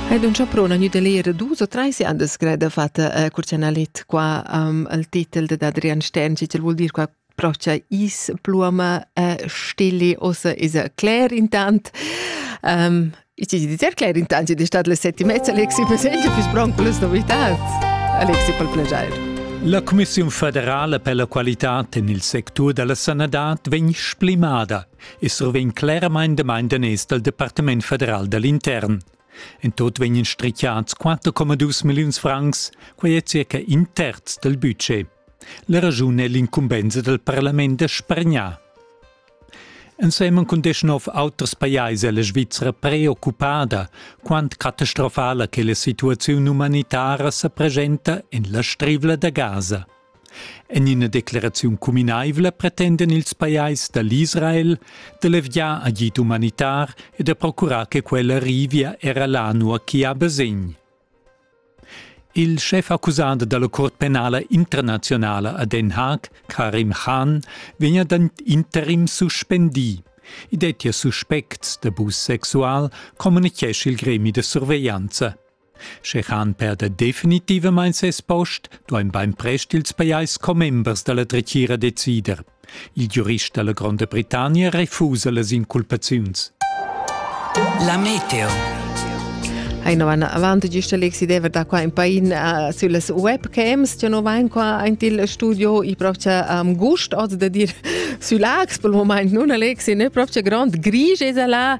Ed un chaprona gnü da leer dus o trais andas greda fatta a Curcianalit qua am al titel dad Adrian Stern, chi vuol dir qua procha is, pluoma e stille ossa esa cler intant. Um, ich di sehr cler intant, di stat le sette mezza Alexi Peseglia fis bronc plus novitats. Alexi pel plagiair. La Commissiun federala per la qualità en il sectur da la sanadad vegn splimada. e survegn cleramain damain daners dal Departament federal da l'intern. En tot vegnan strichiads 4,2 milliuns francs, quai è circa in terz dal budget. La raschun è l'incumbensa dal parlament da spargnar. Ensemen cun deschnov auters pajais è la Svizzera preoccupada, quant catastrofala che la situaziun umanitara sa presenta en la strivla da Gaza. En ina decleraziun cuminaivla pretendan ils pajais da l'Israel da levgiar agid umanitar e da procurar che quella arrivia era là nua ch'i ha basegn. Il schef accusant dalla Cort penala internazionala a Den Haag, Karim Khan, vegn ad interim suspendì. I dettia suspects d'abus sexual, communichesce il gremi da surveglianza. Sche han perder definitivamain ses post, duain bainprest ils pajais commembers da la dretgira decider. Il giurist da la Gronda Britannia refusa las inculpaziuns. La meteo Aina van avanti gista Lexi Dever da qua in pain uh, sulle webcams, io no vain qua aint il studio il propria um, gust oz da dir sü Lax, pel moment nun Alexi, ne propria grand grige es là,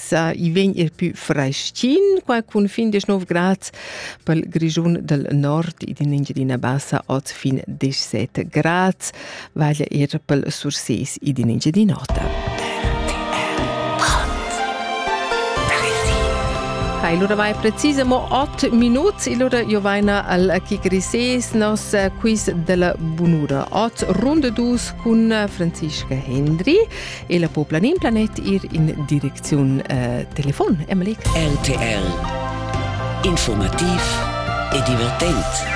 sa i vegn er più freschin qua cun fin 19 grad pel Grischun del Nord ed in Engiadina Bassa od fin 17 grad vaglia er pel Surses ed in Engiadin'Ota. Hai allora mai precisamo 8 minuti, allora io vaina al Chi Grises, nos quiz della bunura. 8 runde dus con Francisca Hendri ella po planin planet ir in direcziun eh, telefon, Emily? RTL Informativ e divertent.